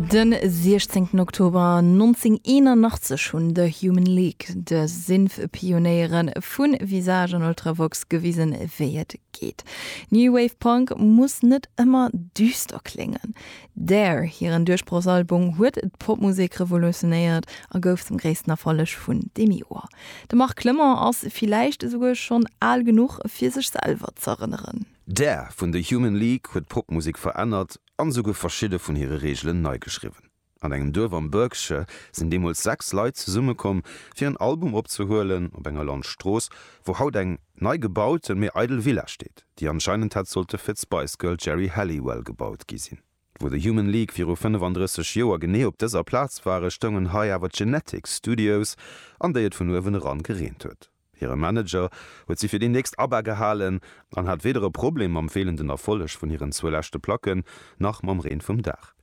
De 16 Oktober 1981 hunn The Human League de Synth-Pionéiere vu Visage an Ultravox gewisen, wéi et geet. New Wave Punk muss net ëmmer düster kléngen. Dare, hiren Duerchbrochsalbung, huet d'Popmusek revolutionéiert a gouf zum gréissten Erfolleg vun deem Joer. De Marc Clement ass villäicht esouguer schonn al genuch, fir sech selwer z'erënneren. Dare vun The Human League huet d'Popmusek verännert an esouguer verschidde vun hire Reegelen nei geschriwwen. An engem Duerf am Berkshire sinn deemools sechs Leit zesummekomm, fir en Album opzehuelen, op enger Landstrooss, wou haut eng. nei gebauten, mee eidel Villa steet, déi anscheinend hätt sollte fir d'Spice Girl Geri Halliwell gebaut gi sinn. Wou de Human League viru 35 Joer genee op dëser Plaz ware, stoungen hei awer d'Genetics Studios, an déi et vun uewen eran gereent huet. Hire Manager huet si fir déi nächst ABBA gehalen an hat weder e Problem mam feelenden Erfolleg vun hiren zwou leschte Placken, nach mam Reen vum Daach.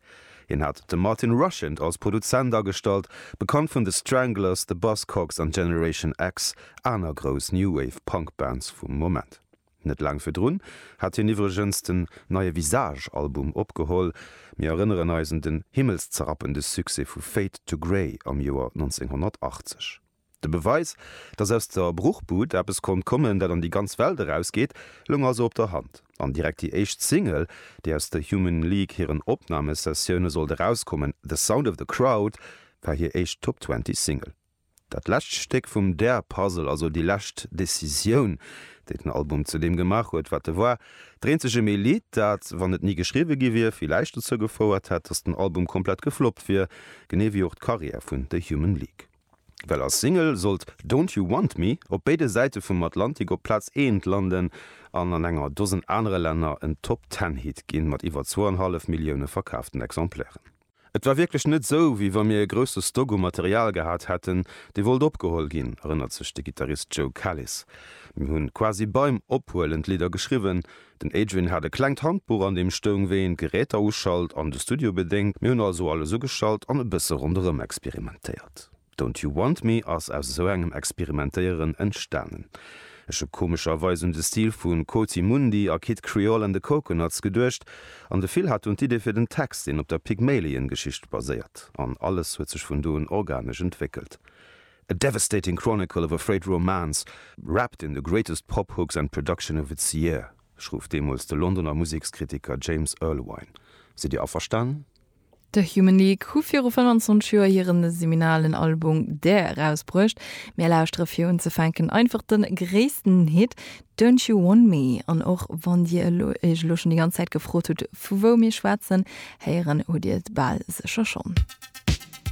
Hien hat de Martin Rushent als Produzent agestallt, bekannt vun The Stranglers, The Buzzcocks an Generation X, aner grouss New Wave-Punk-Bands vum Moment. Net laang virdrun hat hien iwwregens den neie Visage-Album opgeholl. Mir erënneren eis un den himmelszerapende Succès vu Fade to Grey am Joer 1980. De Beweis, datt aus der Bruchbud eppes konnt kommen, dat an déi ganz Welt erausgeet, loung also op der Hand. An direkt déi éischt Single, déi aus der Human League hiren Opnamesessioune sollt erauskommen, The Sound of the Crowd, war hir éischt Top Twenty Single. Dat lescht Stéck vum Dare Puzzle, also déi lescht Decisioun, déi den Album zu deem gemaach huet, wat e war, d'eenzegem ee Lidd, dat, wann et ni geschriwwe gi wier, villäicht dozou gefouert hätt, datt den Album komplett gefloppt wier, genee wéi och d'Karriär vun The Human League. Well als Single sollt Don't You Want Me op béide Säite vum Atlantik op Plaz eent landen an an enger Dosen anere Länner en Top-Ten-Hit ginn, mat iwwer zwouanhallef Millioune verkaaften Exemplairen. Et war wierklech net sou, wéi wa mir e grousse Stock u Material gehat hätten, dee wollt opgeholl ginn, erënnert sech de Gittarist Joe Kalis. Mir hunn quasi beim Ophuelen d'Lidder geschriwwen, Den Adrian hat e klengt Handbuch an deem stoung wéi een d'Geräter uschalt an de Studio bedéngt. Mir hunn also alles ugeschalt an e bësse ronderëm experimentéiert. Don't You Want Me ass aus esou engem Experimentéieren entstanen. Ech hu komescherweis un de Stil vu Coati Mundi a Kid Creole and the Coconuts geduecht an de Phil hat dunn d'Idee fir den Text, deen op der Pygmalion-Geschicht baséiert. An alles huet sech vun do un organesch entwéckelt. A devastating chronicle of a frayed romance wrapped in the greatest pop hooks and production of its year, schruff deemools de Londoner Musekskritiker James Erlewine. Sidd Dir averstanen? The Human League hu viru 25 Joer hiren seminalen Album There erausbruecht. Mir lauschtere fir unzefänken einfach de gréissten Hit Don't You Want Me. An och wann Dir elo Iech elo schonn déi ganz Zäit gefrot hutt, vu wou mir schwätzen, héieren hutt Dir et bal sécher schonn.